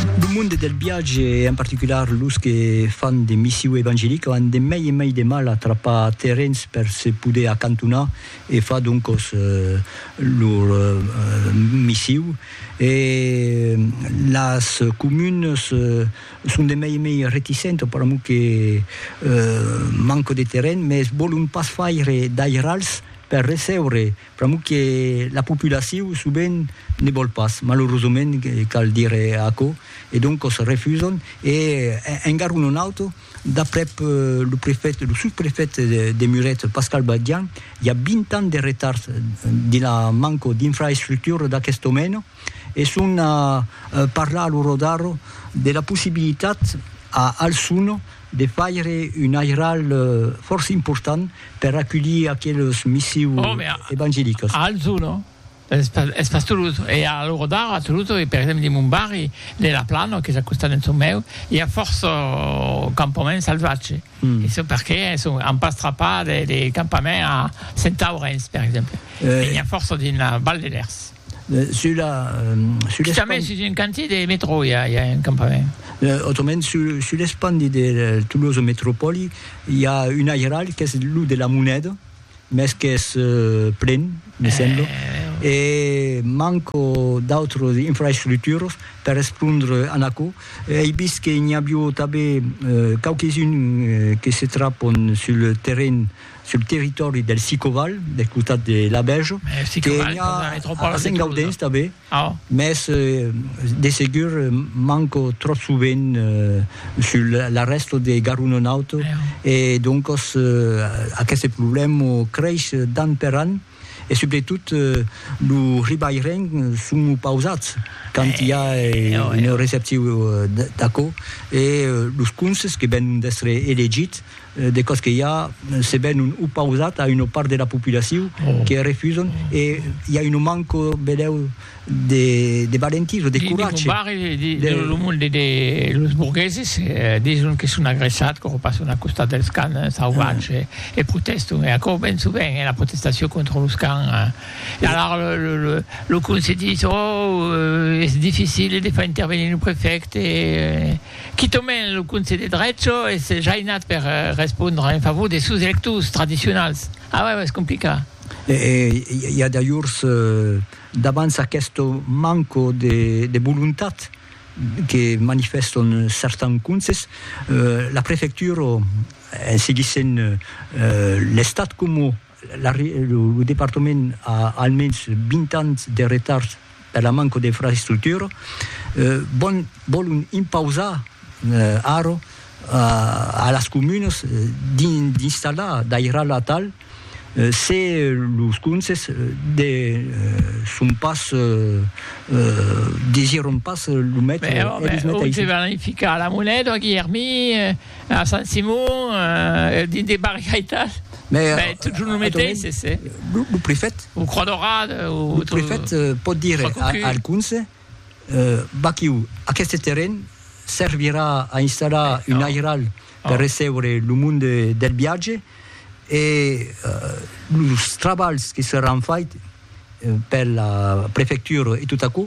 Lo monde del viatge e en particular los que fan de missiu evangelica an de mai e mai de mal a trapar terrens per se poder acantonar e far doncos lor missiu e las comunes son de mai e mai reticentes per amor que manco de terren, mes volon pas faire d'airals per recebre Pr'amor que la populacion sovent ne vòl pas, malorosament cal dire aquò, e doncos refusam e en garon un auto, d'aprèp lo prefèt, lo sosprefèt de Muret, Pascal Badian, i a 20 ans de retard dins la manco d'infraestructura d'aquest domèna e son a parlar a lo Rodaro de la possibilitat a Alçon, de faire un airal fòrça important per aculhir aqueles missius evangelicas. A Alzò, no? Es pas Tolosa. E a l'ora d'ara a Tolosa, per exemple dins mon barri de La Plana, qu'es al costat d'en çò meu, i a fòrça campaments salvatges. E çò perqué an pas trapat de campament a Sentaurenç, per exemple. E n'i a fòrça dins la Val de Lèrs. Sur la... Sur l'espandi... Quitament sus un cantier de metro i a, i a un campament. Autrament, sur, sur l'espandi de Tolosa Metropòli, i a un airal qu'es lo de la moneda, mès qu'es plen, me sembla, e manco d'autras infraestructuras per respondre a aquò. Ei vist que n'i avió tanben quauques-uns que se trapon sur le terrenh sul territòri del Sicoval, del costat de Labèja, que i a a Sengaudens tanben, mès de segur manco tròp sovent sul l'arrèsta de Garunonaut e doncas aqueste problèma creis d'an per an. E subretot lo ribaireng son opausats quand i a un receptiu d'aquò e los conses que venon d'èstre elegits de còs que i a se venon opausats a una part de la populacion que refusan e i a un manco, velèu, de valentís o de coratge. Dins lo barri de lo monde de los borgueses dison que son agressats quò passon al costat dels cans sauvats e protèston e aquò ben sovent es la protestacion contra los cans. E alara lo conselh dis ò es dificil de far intervenir lo prefècte e quitament lo conselh de drecha es jainat per respondre en favor de sos electors tradicionals. Awa es complicat. E i a d'ajorns. Davant aqueste manco de volontat que manifèstan certans conses, la prefectura, en seguissent l'Estat coma lo departament a almens 20 ans de retard per la manca d'infraestructura, vòlon impausar ara a las comunas d'installar d'airal atal Se los conses de son pas desiront pas lo metre, eles meteisses. Autre van ficar a la Moneda, a Guilhermí, a Sant Simon, dins de barriaitas, ben totjorn lo meteisses. Lo prefèt. O Croix Daurada. Lo prefèt pòt dire al conse, vaquiu, aqueste terren servirà a installar un airal. per recebre lo monde del viatge e los trabalhs que seràn fait per la prefectura e tot aquò,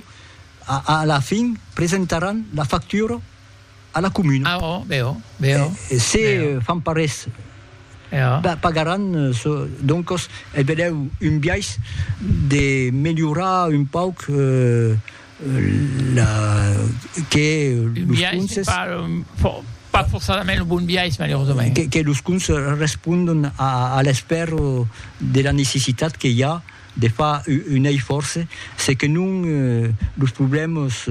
a la fin presentaràn la factura a la comuna. Ah oh, bèu, bèu. E se fan pas res, pagaràn çò. Doncos, velèu un biais de melhorar un pauc la que un biais pas pas forçadament lo bon biais malerosament que, que los contes respondon a, a l'esper de la necessitat que i a de far un eifòrce se que non los problèmas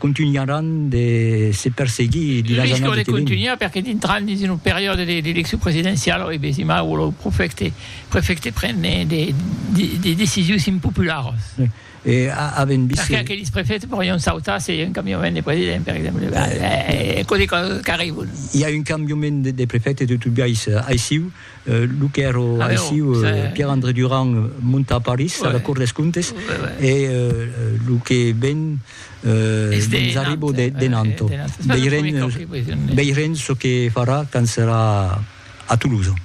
contunharàn de se perseguir dins las annadas de contunhar perque dintran dins una periòde d'eleccion presidenciala e besima lo prefècte prefècte pren de de decisions impopularas. E avèm vist... Perqué aqueles prefèts pòrion sautar se i a un cambiament de president, per exemple? Aquò de còsas qu'arribon. I a un cambiament de prefète de tot biais aissiu, lo qu'èra aissiu Pierre-André Durand monta a París, a la Cour des Comptes, e lo que ven nos arriba de Nantes. Veirem çò que farà quand serà a Toulouse.